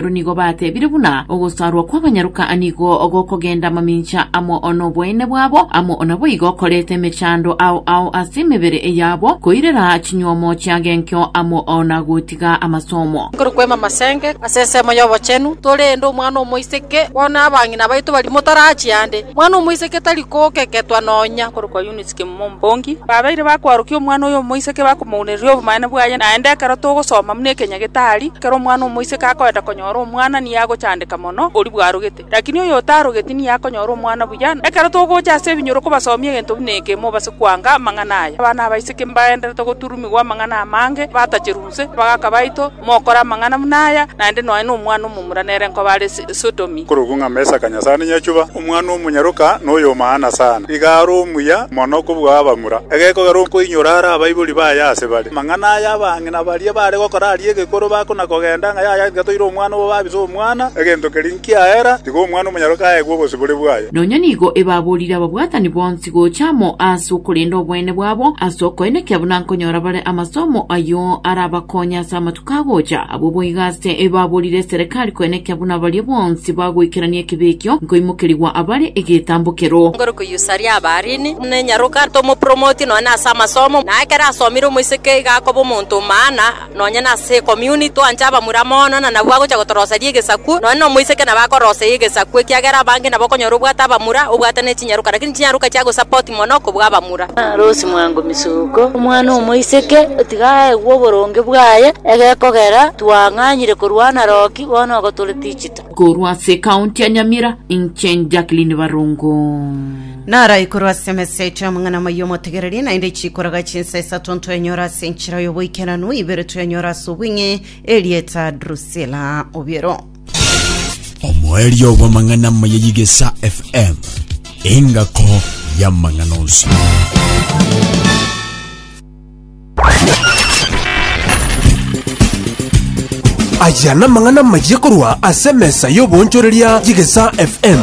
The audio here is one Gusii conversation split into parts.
Aba nigo batebire buna ogosaarwa kw'abanyaroka nigo gokogenda mamincha amo noboene bwabo, amo naboigo koreta emechando ao ao ase emebere yabo, koirera chinyuomo chia genkio amo na gotiga amasomo. Korwa kwema amasenge ase ensemo y'obochenu, torende omwana omoiseke, bono abang'ina baito baria motarachia ande, omwana omoiseke tari kookeketwa nonya korokwa Yunisi. Mombongi, babeire bakoarokia omwana oyo omoiseke bakomounereria obomanene bwaye, naende ekero togosoma buna ekenya getari, ekero omwana omoiseke akoenda konyora omwana nigo agochandeka mono oria bwarogete, lakini oyo otarogeti nigo akonyora omwana buya. Ekero togocha ase ebinyoro kobasomia egento buna eke, mobase koanga amang'ana aya. Abana abaiseke mbagendererete goturumigwa amang'ana amange, batacherwa. Gose abagaaka baito, mokore amang'ana buna aya, naende nonya nomwana omomura nere nkoba are Sodomi. Korokwo ng'a Mesaka Nyasaane Nyachuba, Omwana-o-monyaroka, na Oyomaana sana, nigo are omuya mono kobua abamura, egekogera okoinyora are abaibori baye ase bare. Amang'ana aya abang'ina baria baare gokora aria egekoro bakona-kogenda ng'a yaya tiga toire omwana obo babisa omwana, egento keria nkiaera, tiga Omwana-o-monyaroka aegwe obosibore bwaye. Nonya nigo ebaborire ababwatani bonsi. tigocha amo ase okorenda oboene bwabo ase okoyena ekiya buna nkonyora bare amasomo ayio arabakonye ase amatuko agocha. Abwo boigo ase ebaborire eserekari koyena ekiya buna baria bonsi bagoikerania ekibe ekio nkoimokerigwa abare egetambokero. Ngoro koyusaria Abarini, buna enyaroka tomopromotie nonye ase amasomo, na ekero asomire omoiseke iga akoba omonto o maana. nonye nase ecommuni twanche abamura mono, na nabwo agocha gotoroseria egesaku, nonye nomoiseke nabo akoroseyia egesaku, ekiagera abange nabo okonyora obwate abamura, obwate ne chinyaroka, lakini chinyaroka chiagosupport mono kobua abamura. Arosie mwango misuko, omwana omoiseke otiga aegwe oboronge bwaye, egekogera twang'anyire korwa naroki, bono ogo tore tichita. Korwa ase ekaunti ya Nyamira, inche Jacqueline Barongo. Naraikorwe ase emeseto y'amang'ana amaya omotegereri, naende chikoraga chinsa isato ntoenyora ase enchera y'oboikeranu, ibere twenyora ase obweng'e, erieta Drusila obiero. omoerio bw'amang'ana amaya y'egesa fm engako y'amang'ana onsi Aya namang'ana amayia korwa ase emesa y'oboonchoreria y'Egesaa FM.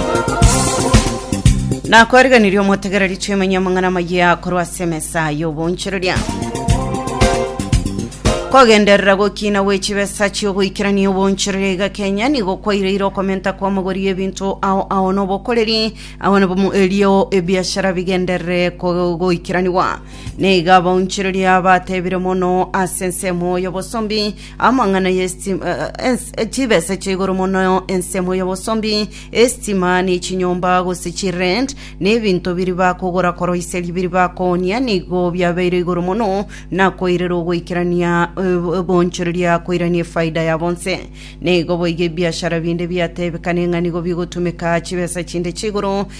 nakwariganirie omotegereri twemenye amang'ana amayia korwa ase emesa y'oboonchoreria kogenderera gokina gwe chibesa chiogoikerania oboonchoreria iga kenya nigo kwaireire okomenta kw'amagori y'ebinto ao ao nobokoreri ao nabo erio ebiashara bigenderere kogoikeraniwa Nigo abaunchoreria batebire mono ase ensemo y'obosombi amang'ana y'esiti- eh, eh, ens- eh, chibesa chia igoro mono ensemo y'obosombi, esitima, ne chinyomba, gose chirent, ne ebinto biri bakogora koroiseria biri bakoonia, nigo biabeire igoro mono na koirera ogoikerania eh, obonchoreria koirania efaida ya bonse. Nigo boigo ebiashara binde biatebekane ng'a nigo bigotumeka chibesa chinde chia igoro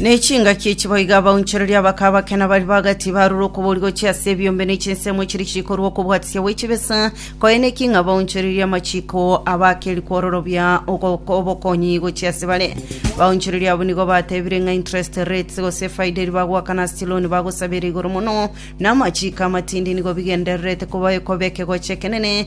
n'echingaki echi boiga abaunchoreria bakaba bakena bari bagati barure okobori gochia ase ebiombe n'echinsemo echiri chikorwa okobwatisia gwe chibesa koene ki ng'a baunchoreria amachiko abakeri kwororobia ogo- obokonyi gochia ase bare baunchoreria abo nigo batebire ng'a interest rates gose faida eri bagoakana ase chiloni bagosaba ere igoro mono na amachiko amatindi nigo bigendererete koba ekobeke gocha ekenene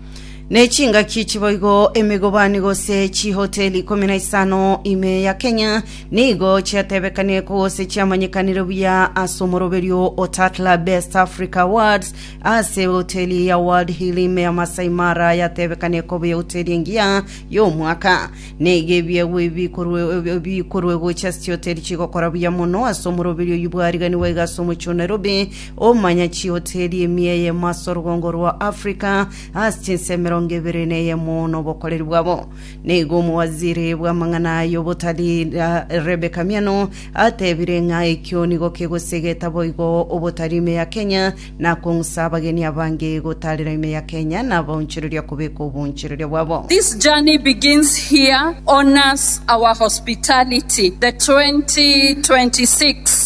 Ne chingaki chiboigo emegobani gose chihoteli ikomi na isano ime ya Kenya nigo chiatebekanie ko gose chiamanyekanire buya ase omoroberio o Tatler Best Africa Awards ase hoteli ya World Hill ime ya Masai Mara yatebekanie koba ehoteli engiya y'omwaka. Neiga ebiegwa ebi bikorwe- bikorwe gocha ase chihoteli chigokora buya mono ase omoroberio oyio bwariganiwa iga ase omochie o Nairobi Omomanyachioteri emiyeyemo ase orogongo rwa Africa ase chinsa emerongo ebere na eyemo nobokoreri bwabo. Nigo omowaziri bw'amang'ana aya obotari Ra- Rebecca Miano atebire ng'a ekio nigo kegosegeta boigo obotari ime ya Kenya na kong'usa abageni abange gotaarera ime ya Kenya na abaonchoreria kobeka oboonchoreria bwabo. This journey begins here, honors our hospitality, the 2026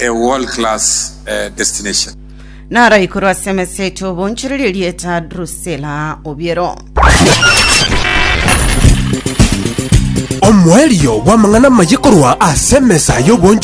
a world class uh, destination. Naraikorwa ase emesa yaito obonchereri erieta Drusela obiero. Omoerio bw'amang'ana maye korwa ase emesa y'obonchoreri